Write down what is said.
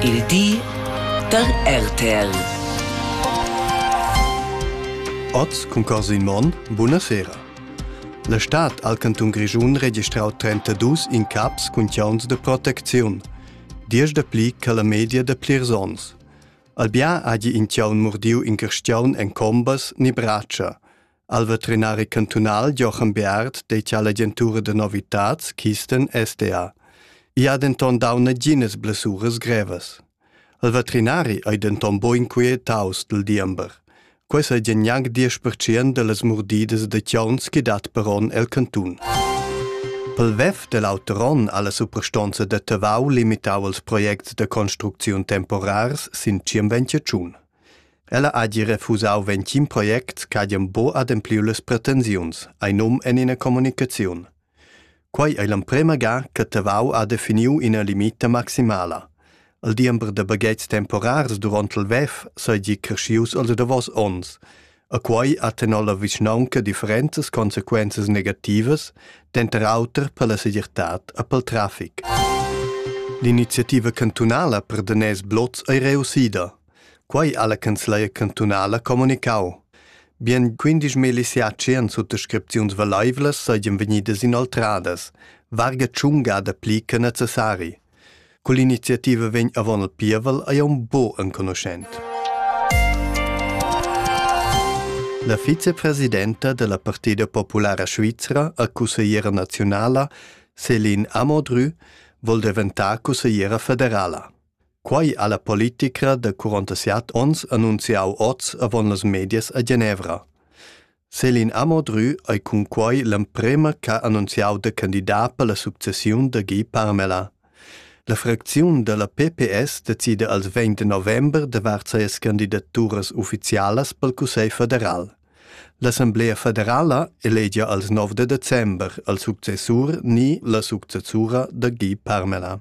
Il di da RTL. Oz cun Corsin Monn, buna sera. La stad al cantun Grischun registrau 32 incaps cun chiauns de protecziun, diesch da pli che la media da plirs onns. Albia hagi in chiaun murdiu in carstiaun en combas ni bratscha. Al veterinari cantunal Jochen Beard dettia l'agentura da novitads Kisten SDA. I ha denton dau naginas blessuras grevas. Il veterinari ei denton bo inquietaus dil diember. Quei sa gie gnanc 10% dallas murdidas da chauns che dat per onn el cantun. Pel WEF dell auter onn alla suprastonza da Tavau limitau els projects da construcziun temporars sin 25 Ella hagi refusau ventgin project ch'hagen buca adempliu las pretensiuns, ei num en ina communicaziun. Quei ei l'emprema ga che Tavau ha definiu ina limita maximala. Il diember da baghetgs temporars duront il WEF seigi creschius els davos onns. E quei ha tenor la vischnaunca differentas consequenzas negativas, denter auter per la segirtad e pel traffic. L'iniziativa cantunala per daners blots ei reussida. Quei ha la canzleria cantunala comunicau. Bien 15 miliziaci han suttascripziuns valaivlas seigien vegnidas inoltradas, varga tschunga da pli che necessari. Quell'iniziativa vegn avon il pievel ei un bo enconuschent. La vicepresidenta della Partida Populara Svizra a consigliera nazionala, Céline Amodru, vol diventar consigliera federala. Quai ha la politica de 47 ons annunziau oz avon las medias a Genevra. Céline Amodru ei cunquei l'emprema ch'ha annunziau da candidat per la successiun da Guy Parmelin. La fracziun dalla PPS decida als 20 november davart sias candidaturas ufficialas pel Cussegl federal. L'Assemblea federala elegia als 9 december al successur ni la successura da Guy Parmelin.